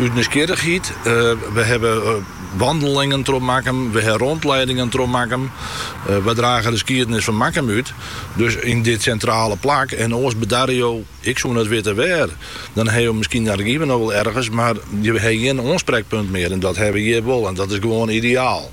Ut nijsgjirrigheid. We hawwe wandelingen troch Makkum, we hawwe rondleidingen troch Makkum. We drage de skiednis fan Makkum út, dus yn dit sintrale plak. En oars bedarje jo, ik soe net witte wêr. Dan ha jo miskien argiven noch wol ergens, mar jo ha gjin oansprekpunt mear. En dat ha we hjir wol en dat is gewoan ideaal.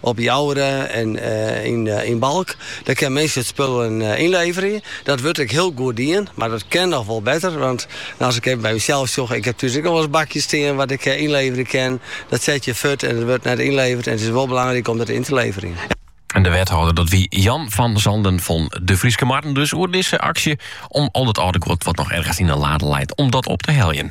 Op 'e Jouwer en yn Balk, dêr kin minsken it spul ynleverje. Dat wurdt ek hiel goed dien, mar dat kin noch wol better. Want as ik even by mysels sjoch, ik heb thús ek noch wol ris bakjes stean wat ik ynleverje kin. Dat set je furt en it wurdt net ynleverd. En it is wol belangryk om dat yn te leverjen. De wethâlder, dat wie Jan van Zanden fan De Fryske Marren dus, oer dizze aksje om al dat âlde guod wat noch ergens yn in lade leit, om dat op te heljen.